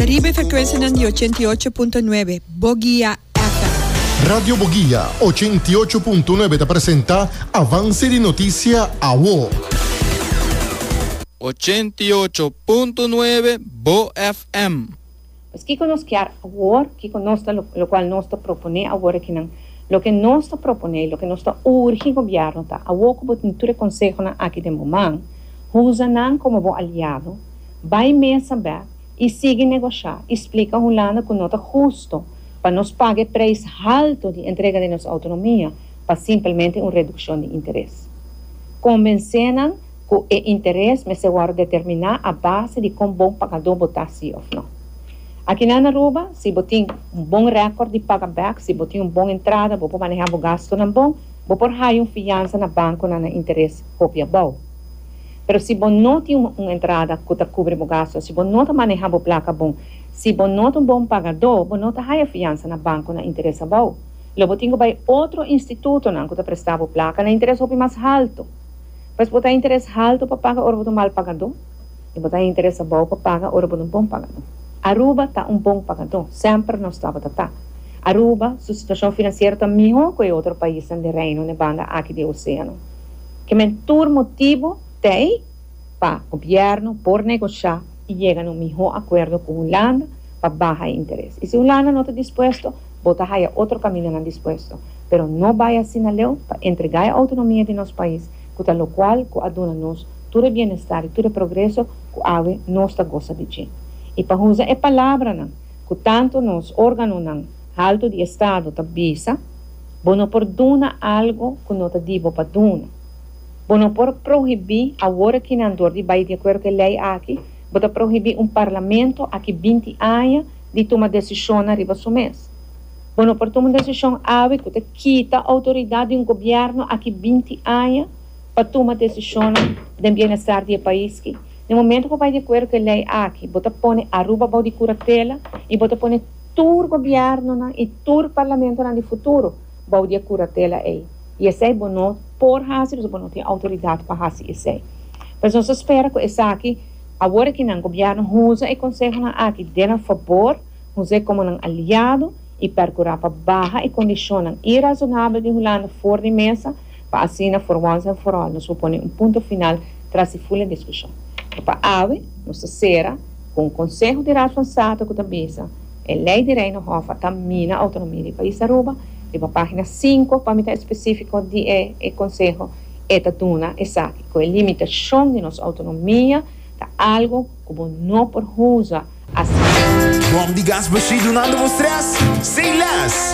Riba e frecuencianan di ochenta i ocho punto nuebe, Bogia FM. Radio Bogia ochenta i ocho punto nuebe ta presenta avance di noticia awo. Ochenta i ocho punto nuebe, Bo FM. Pues kico nos kier awor? Kico nos ta locual nos ta propone awor akinan? Loke nos ta propone y loke nos ta urgi gobierno ta, awor cu bo tin tur e consehonan aki den bo man, huza nan como bo aliado, bay mesa bek, i sigui negosha i splika Hulanda ku no ta hustu pa nos paga e preis haltu di entrega di nos autonomia pa simpelmente un redukshon di interes. Konvensé nan ku e interes mester wòrdu determiná a base di kon bon pagadó bo ta si òf no. Akinan na Aruba, si bo tin un bon rèkòrt di paga bèk, si bo tin un bon entrada, bo por manehá bo gastunan bon, bo por haya un fiansa na bankunan na interes hopi abou. Pero si bo no tin un entrada cu ta cubri bo gasto, si bo no ta maneha bo placa bon, si bo no ta un bon pagadó, bo no ta haya fiansa na banco na interes abao. Lo bo tin cu bay otro institutonan cu ta presta bo placa na interes hopi mas halto. Pues bo ta haya interes halto pa paga ora bo ta un mal pagadó y bo ta haya interes abao pa paga ora bo ta un bon pagadó. Aruba ta un bon pagadó, semper nos tabata ta. Aruba su situacion financiero ta miho cu e otro paisnan den Reino nebanda aki di e oceano. Kimen tur motibu t'ei pa gobièrnu por negosha i yega na un mihó akuerdo ku Hulanda pa baha e interes. I si Hulanda no ta dispuesto, bo ta haya otro kamindanan dispuesto. Pero no bai asina leu pa entregá e outonomia di nos pais, ku ta lokual ku a duna nos tur e bienestar i tur e progreso ku awe nos ta gosa di dje. I pa usa e palabranan ku tantu nos órganonan haltu di estado ta bisa, Bo no por duna algu ku no ta di bo pa duna. Bo no por prohibí, awor aki nan dor di bai di akuerdo ku e lei aki, bo ta prohibí un parlamento aki binti aña di tuma desishonnan riba su mes. Bo no por tuma un desishon awe ku ta kita outoridat di un gobièrnu aki binti aña pa tuma desishonnan den bienestar di e pais ki. Den momentu bo bai di akuerdo ku e lei aki, bo ta pone Aruba bou di kuratela i bo ta pone. tur gobièrnunan i tur parlamentonan di futuro bou di e kuratela ei, i esei bo no por hasi pasobra bo no tin outoridat pa hasi esei. Por eso nos ta spera ku esaki, awor ki nan gobièrnu hunza e konsehonan aki den nan fabor, hunza e komo nan aliado i perkurá pa baha e kondishonnan irazonabel di Hulanda for di mesa, pa asina for once and for all nos por pone un punto final tras di ful e diskushon. Por pa awe nos ta sera. Ku un konseho di Raad van State ku ta bisa E lei di Reino Hof a ta mina outonomia di pais Aruba, riba página sinku, pa mi ta espesífiko di e e konseho e ta duna esaki, ku e limitashon di nos outonomia ta algu ku bo no por huza asina. Bòm di gas Bushy dunando bo strès? Say less!